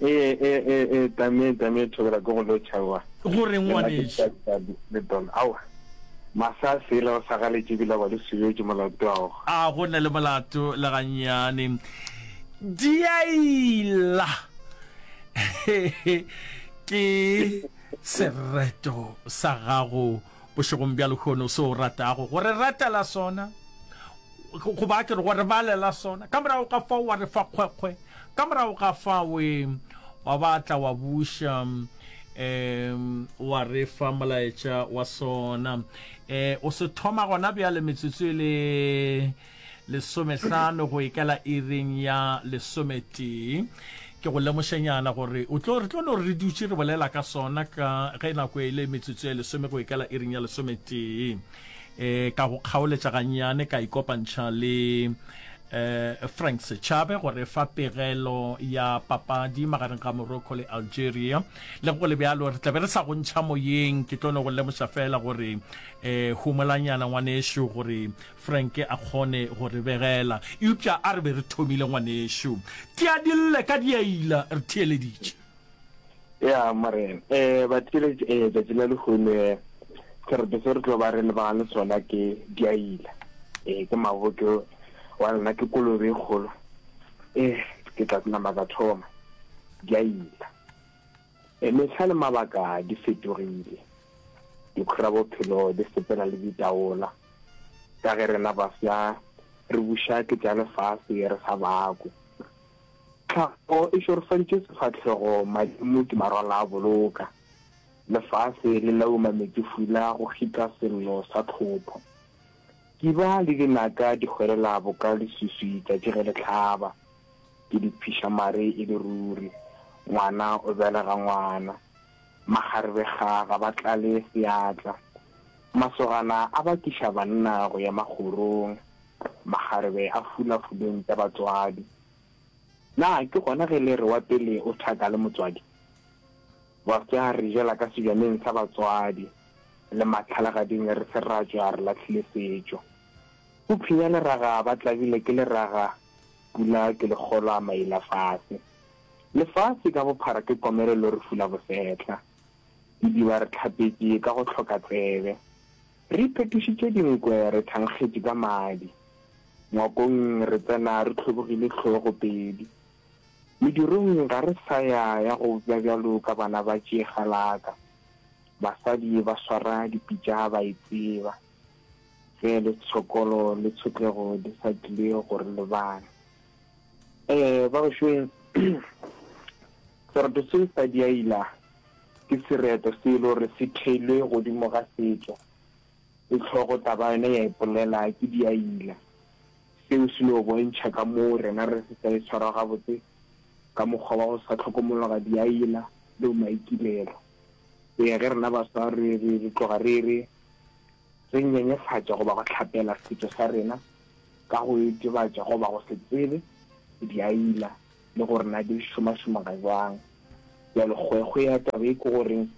ee ee ee ee tame tame thobela ko go lo tšhawa go re ngwaneša le don awa masa sela o sa galetše bila ba le sebetše molato ao a go na le molato le ganyane diaila ke sereto sa gago Bošegong bja lehono, se o ratago go re ratela sona, goba ke re go re balela sona, ka morago ga fao wa re fa kgwekgwe, ka morago ga fao e, wa ba tla wa buša, um, wa re fa molaetša wa sona. Um, o se thoma gona bjale, metsotso e le. Lesomehlano go e kela iring ya lesometee. Ke go lemošenyana gore o tlo, re tlo no re dutše re bolela ka sona ka ge nako e le metsotso ye lesome go e kela iring ya lesometee. E, ka go kgaoletša gannyane ka ikopantšha le e, Frank Sechabe go re fa pegelo ya papadi magareng ga Morocco le Algeria. Le go le bjalo re tla be re sa go ntšha moyeng, ke tlo no go lemoša feela gore e, humolanyana ngwanešu gore Frank a kgone go re begela, eupša a re be re thomile, ngwanešu. Tia dille ka diaila, re theeleditše. Ya, Morena. Ee, batheeleditše, ee, tšatši la lehono, ee, sereto se re tlo ba re lebagane le sona ke diaila. Ee, ke maboke, wa lona ke kolobe e kgolo. Ee, ke tla nama ka thoma. Diaila. Mehla le mabaka di fetogile. Dikgorabophelo di sepela le ditaola. Ka ge rena bafsa re buša ke tša lefase re sa bakwe. Tlhago e šorofantše sefahlego madimo di marwala a boloka. Lefase le lauma metsefula go kgitla sello sa tlhopho. Kiba le dinaka di hwelela boka leswiswi tšatši ge le hlaba. Ke di phiša mare e le ruri. Ngwana o belega ngwana. Makgarebe ga ga ba tlale seatla. Masogana a bakiša banna go ya magorong. Makgarebe a fula fuleng tša batswadi. Na ke gona ge le re wa pele o thaka le motswadi? Bafsa re jela ka sebjaneng sa batswadi. Le matlhalagading re se ratšwa re lahlile setšo. Go phenya leraga ba tlabile ke leraga pula ke lekgolo a maila fase. Lefase ka bophara ke komelo lo re fula bosetlha. Didiba re tlhapetše ka go hloka tsebe. Re iphetošitše dinkwe re thankgetše ka madi. Ngwakong re tsena re hlobogile hlogo pedi. Medirong ga re sa ya ya go bja bjalo ka bana ba tšeegalaka. Basadi ba swara dipitša ba e tseba. ge le tshokolo le tshotlego di sa tlile go re lebala. Eh, ba bošweng, sereto se sa diaila ke sereto se le gore se theilwe godimo ga setšo, le tlhogo taba yone ya ipolela ke diaila. Seo se no bontšha ka moo rena re se sa e tshwara gabotse ka mokgwa wa go sa tlhokomologa diaila le bomaikilelo. go ya ge rena baswa re tloga re re re nyenyefatša goba go hlapela setšo sa rena ka go itebatša goba go se tsebe diaila le gore na di šomašoma ga jwang. Bjalo kgwekgwe ya taba e ke goreng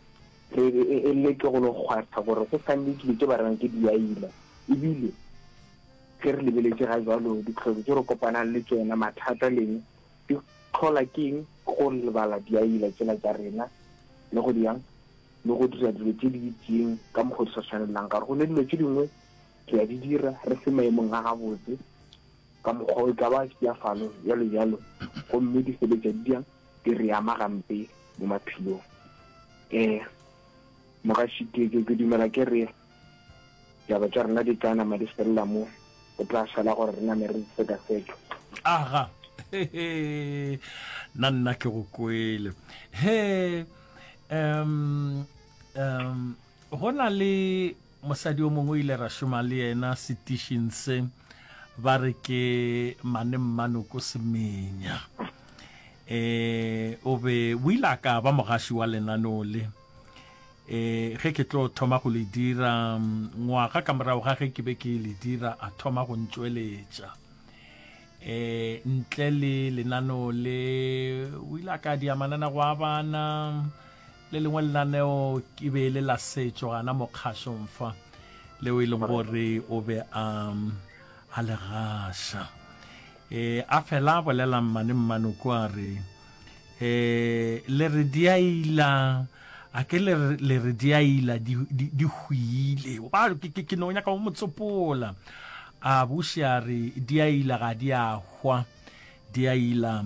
re e leke go lo kgwatha gore go sa nne dilo tše ba rena ke diaila ebile ge re lebeletše ga jwalo ditlhoko tše re kopanang le tšona mathata leng Di hlola ke eng go lebala diaila tšela tša rena le go diang le go dira dilo tše di itseng ka mokgwa di sa tshwanelelang ka gore go ne dilo tše dingwe re a di dira re se maemong a gabotse ka mokgwa o e ka ba ya falo jalo jalo gomme di sebetsa di diang di re ama gampe mo maphelong um mogašiteke ke dumela ke re Ditaba tša rena di tla nama di felela mo, go tla šala gore re name re di sekaseke. Aga, he-he, na nna ke go kwele. He, um, um, go na le mosadi o mongwe o ile ra šoma le yena setišing se, ba re ke Mane Mmanoko Semenya. Eh, o be, o ile a ka ba mogaši wa lenaneo le. e ge ke tlo thoma go le dira ngwaga ka morago ga ge ke be ke le dira a thoma go ntšweletša e ntle le lenaneo le o ile a ka dia manana go a bana le lengwe lenaneo ke be le la setšo gana mokgašong fa leo e leng gore o be a a le gaša e a fela bolelang mane mmane ko a re E, le re di a ila a ke le re- le re di a ila di di- di hwile ba ke- ke ke no nyaka go mo tsopola a buši a re di a ila ga di a hwa di a ila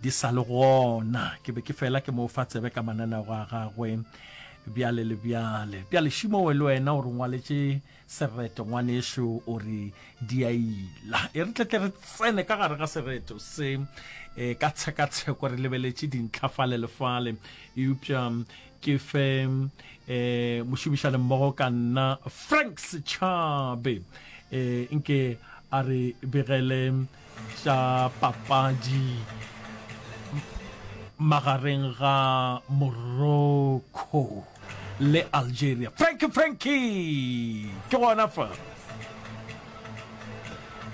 di sa le gona ke be ke fela ke mo fa tsebe ka mananego a gagwe bjale le bjale bjale šimowe le wena o re ngwaletše sereto ngwanešu o re di a ila e re tletle re tsene ka gare ga sereto se e ka tshekatsheko re lebeletše dintlha fale le fale eupša ke fe um mošomišane mmogo ka nna frank setšhabe um nke a re begele tša papadi magareng ga Morocco le Algeria. Frankie Frankie ke gona fa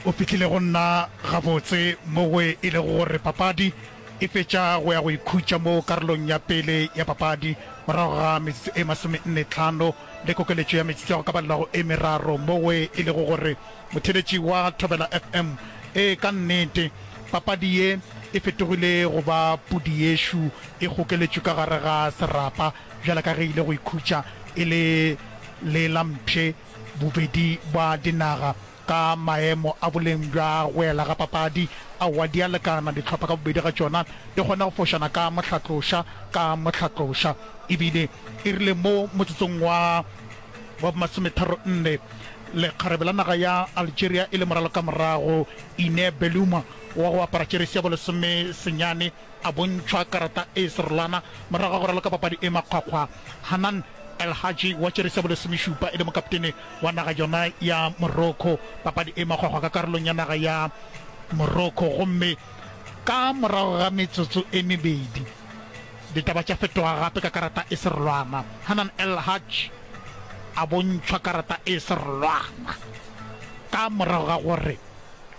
o fitlhile go nna gabotse mo go e lego gore papadi e fetša go ya go ikhutša mo karolong ya pele ya papadi morago ga metsotso e masome nne tlhano le kokeletšo ya metsotso ya go ka balelago e meraro mo go e lego gore Motheeletši wa Thobela FM, Ee, ka nnete, papadi ye e fetogile go ba pudi yešo e gokeletšwe ka gare ga serapa bjale ka ge e ile go ikhutša e le le la mpshe bobedi bwa dinaga ka maemo a boleng bja go ela ga papadi aowa di a lekana, dihlopha ka bobedi ga tšona di kgona go fošana ka mohlatloša ka mohlatloša e bile e rile mo motsotsong wa wa masometharo-nne, lekgarebe la naga ya Algeria e le moralo ka morago, Ine Beluma wa go apara jeresi ya bolesome senyane a bontšhwa karata e serolwana morago ga go raloka papadi e makgwakgwa. Hanan El Hadji wa jeresi ya bolesomešupa e le mokaptene wa naga yona ya Morocco papadi e makgwakgwa ka karolong ya naga ya Morocco gomme ka morago ga metsotso e mebedi, Ditaba tša fetoga gape ka karata e serolwana. Hanan El Haj a bontšhwa karata e serolwana ka morago ga gore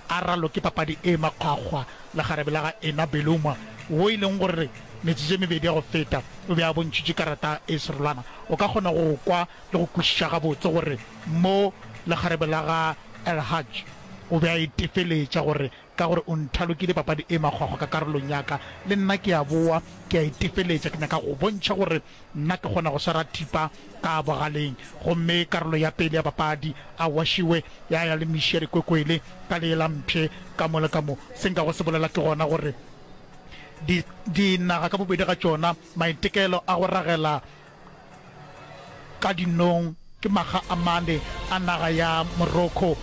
a raloke papadi e makgwakgwa le kgarebe la ga Ena Beluma wo e leng gore metsotso e mebedi ya go feta o be a bontšhitše karata e serolwana. O ka kgona go kwa le go kwešiša gabotse gore mo le kgarebe la ga El Haj o be a e tefeletša gore Ka gore o nthalokile papadi e makgwakgwa ka karolong ya ka, le nna ke a boa, ke a itefeletša. Ke nyaka go bontšha gore nna ke kgona go swara thipa ka bogaleng. Gomme karolo ya pele ya papadi, a wašiwe, ya ya le miši ya dikwekwele ka lee la mpshe ka mo le ka mo. Se nkago se bolela ke gona gore di, dinaga ka bobedi ga tšona, maitekelo a go ragela Ka dinong ke makga a mane a naga ya Morocco,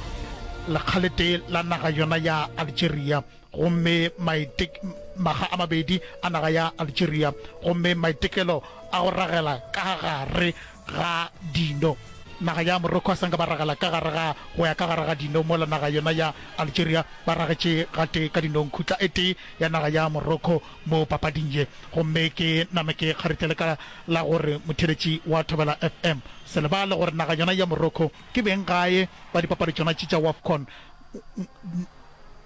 lekga le tee la naga yona ya Algeria, gomme maite, makga a mabedi a naga ya Algeria, gomme maitekelo a go ragela ka gare ga dino, naga ya Morocco a sa nka ba ragela ka gare ga, go ya ka gare ga dino, mola naga yona ya Algeria ba ragetše gatee ka dinong khutla e tee ya naga ya Morocco. mo papading ye gomme ke name ke kgaritlele ka la gore motheeletši wa Thobela FM. Se lebale gore naga yona ya Morocco ke beng gae ba dipapadi tšona tše tša Wafcon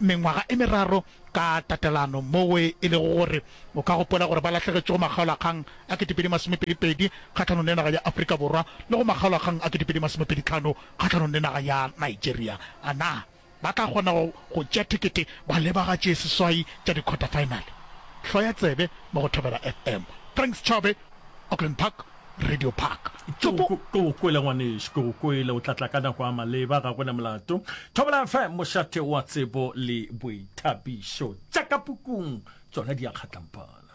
mengwaga e meraro ka tatelano moo e lego gore o ka gopola gore ba lahlegetše go makgaolakgang a ketepedi masomepedi pedi kgahlanong le naga ya Afrika Borwa le go makgaolakgang a ketepedi masomepedi tlhano kgahlanong le naga ya Nigeria. A na Ba tla kgona go go tšea thekete ba leba ga tše seswai tša dikhwatafaenale. Hlo ya tsebe mo go Thobela FM. Franks Chobe, Auckland Park, Radio Park. Tšopo! Ke go kwele ngwanešu, ke go kwele. O tla tla ka nako a maleba, ga go na molato. Thobela FM, mošate wa tsebo le boithabišo. Tša ka pukung tšona di a kgatlampana.